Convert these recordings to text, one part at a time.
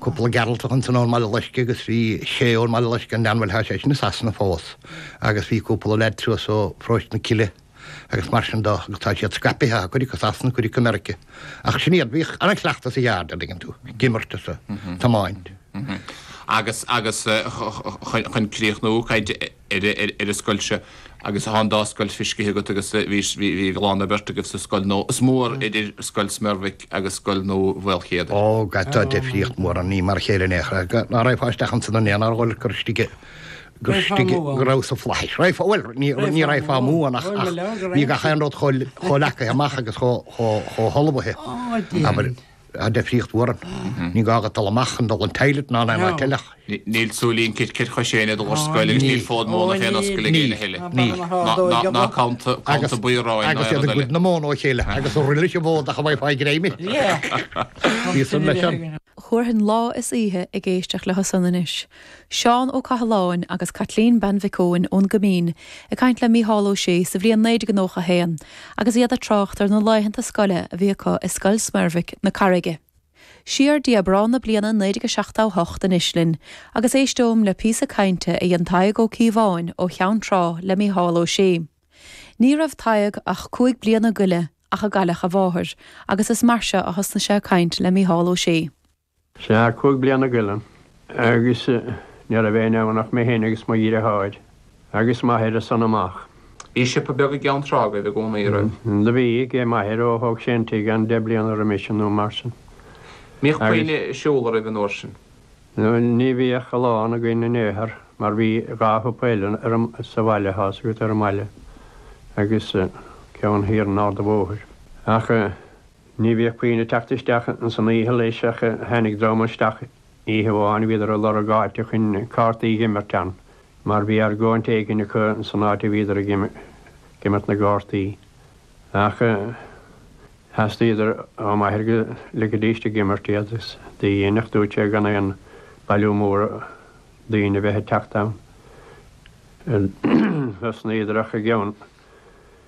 Cúpla Gearaltach ansan ón mBaile Loisce agus bhí sé ón mBaile Loisce an Leanbhaileach thá seisean i Sasana fós agus bhí cúpla leaid suas ó Pharóiste na Cille agus mar sin de agus tá siad scaipithe thá cuid acu i Sasana cuid acu i Meiricea ach sin iad bhíodh an-chleachtadh againn an dtuigeann tú ag imirt is a' tiomáint. Agus agus chun críochnú caint ar an scoil seo agus tá an dá scoil fiscithe agat agus bhí a lán oibre agat sa scoil nua. Is mór idir Scoil Smerbhic agus scoil nua Mhaolchéadair. Ó, tá difríocht mór ann, ní mar a chéile in aon chor. Ná raghfá isteach ansin in aon ardhol gur istigh i, gur istigh i, go raibh sna flaithis. Raghfá, bhuel, ní, ní raghfá amú ann ach, ach bhí gach aon rud chomh, chomh leagaithe amach agus chomh, chomh, chomh hullmhaithe, abair. a difríocht mhór ann. Ní gá agat dul amach chun dul don toilet ná in aon áit eile ach. Níl siúl ar chois éinne go dtí an scoil agus níl fód móna fén ascaill ag éinne eile. Níl. Ná canta buí aráin ná eile. Agus iad ag goid na móna ó chéile agus an roille is an fód chun a bheith ag fáil greime. Bhí san leis an. Thabharfainn lá is oíche ag éisteacht le Hosanna anois Seán Ó Cathaláin agus Caitlín Bean Mhic Eoin ón gCoimín ag caint le Mícheál Ó Sé sa bhliain 1991 agus iad ag trácht ar na laethanta scoile a bhí acu i Scoil Smerbhic na Carraige. Siar go dtí Aibreán na bliana 1978 anois linn agus éisteoim le píosa cainte a dhein Tadhg Ó Cíobháin ó Cheann Trá le Mícheál Ó Sé. Ní raibh Tadhg ach cúig bliana go leith nuair a cailleadh a mháthair agus is mar seo a thosnaigh sé ag caint le Mícheál Ó Sé. Sea, cúig bliana go leith, agus ní raibh éinne ann ach mé fhéin agus mo dhriotháir agus m'athair as san amach. Bhí siopa beag i gCeann Trá agaibh i gcónaí, a raibh? Do bhí, age m'athair, ó thóg sé an tigh ann deich bliana roimhe sin nó mar sin. Mbíodh puinn ag siúl oraibh an uair sin? Ní bhíodh a lán againn in aon chor, mar bhí dhá shiopa eile ar an, sa bhaile, thíos agat ar an mbaile agus ceann thiar in Ard a Bhóthair, ach. Ní bhíodh puinn ag teacht isteach ins an oíche leis ach tháinig dream isteach oíche amháin, bhíodar ag lorg áite chun cártaí a dh'imirt ann mar bhí argóint éigin acu san áit a bhíodar ag imirt na gcártaí. Ach theastaíodar ó m'athair go ligfeadh sé ag imirt iad agus do dhein. Dúirt sé gan aon bailiú mór daoine bheith ag teacht ann. Thosnaíodar ach i gceann.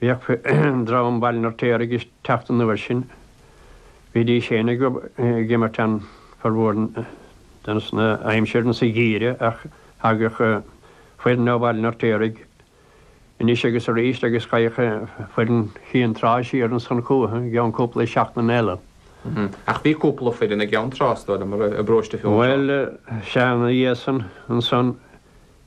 Bhíodh dream Bhaile an Fheirtéaraigh ag teacht an uair sin. Bhídís féin ag imirt ann formhór na haimsire sa gheimhreadh ach thagadh foireann ó Bhaile an Fheirtéaraigh anois agus arís agus ghabhadh foireann Chionn Trá siar ansan chúthu i gceann cúpla seachtain eile. Ach bhí cúpla foireann i gCeann Trá, is dóigh liom, i bParóiste Fionntrá. Bhuel, sea, ina dhiaidh san, ansan,